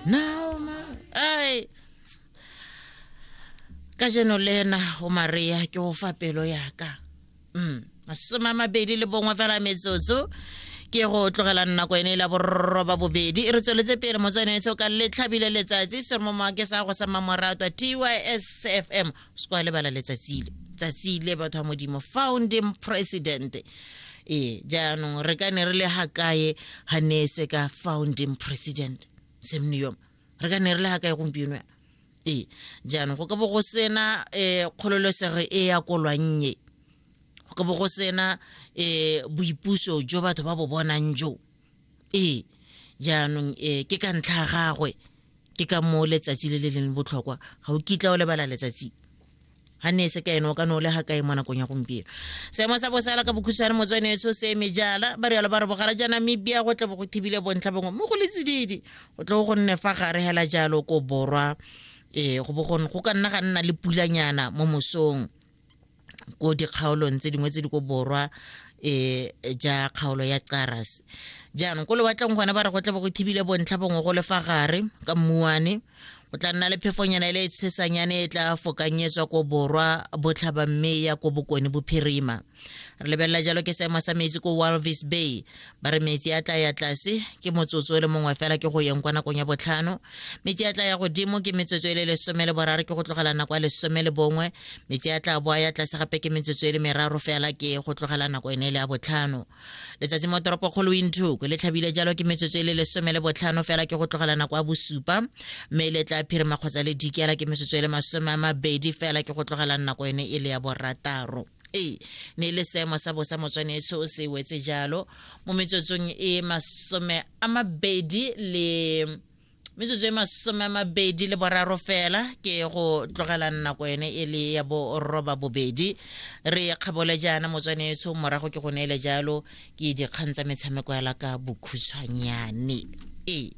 nao mara ai ka jeno le ena o maria ke go fa pelo yaka mm masome a mabedi le bongwe fela metsotso ke go tlogela nako ene e la borroba bobedi re tsweletse pele motswanetso ka letlhabile letsatsi se re mo maake sa go sa mamoratwa tysfm se kwa lebala letsatsile tsatsi le batho ba modimo founding president ee jaanong re ka ne re le ga kae ga ne e se ka founding president semneom re ka ne re le ga kae gompieno yana ee jaanong go ka bo go sena um kgololesego e ya kolwannye go ka bo go sena um boipuso jo batho ba bo bonang joo Ee, jaanong e ke ka ntlha ya gagwe ke ka moo letsatsi le le leng botlhokwa ga o kitla o lebala letsatsi ga ne e se ka ene o ka ne o le ga kae mo nakong ya gompieno seemo sa bosala ka bokhutshwane motswane etso se eme jala ba rialo ba re bogara ja namibia go tle bo go thibile bontlha bongwe mo go le tsididi go tle go nne fa gare hela jalo ko borwa ee go bo go ka nna ga nna le pulanyana mo mosong ko dikgaolong tse dingwe tse di ko borwa e ja kgaolo ya caras jaanong ko lewatleng gone ba re go tla bo go thibile bontlha bongwe go le fa gare ka mmuane o tla nna le phefonyana e le e tshesanyane e tla fokanyetswa ko borwa botlhaba mme ya ko bokone bophirima re lebelela jalo ke seemo sa metsi ko walvis bay ba re metsi a tla ya tlase ke motsotso o le mongwe fela ke go yeng kwa nakong ya botlhano metsi a tla ya godimo ke metsotso e le lesome le boraro ke go tlogela nako ya lesome le bongwe metsi a tla boa ya tlase gape ke metsotso e le meraro fela ke go tlogela nako ene le ya botlhano letsatsi mo toropo kgolo winthuko le tlhabile jalo ke metsotso e le lesome le botlhano fela ke go tlogela nako ya bosupa mme le tla phirima kgotsa le dikela ke metsotso e le masome a mabedi fela ke go tlogela nako ene e le ya borataro e ne le seemo sa bosa motswanetsho o se wetse jalo mo metsotsong e masome a mabedi le metsotso e masome a mabedi le boraro fela ke go tlogela nako ene e le ya boroba bobedi re kgabole jaana motswanetsho morago ke go neele jalo ke dikgang tsa metshameko ya la ka bokhutshwanyane e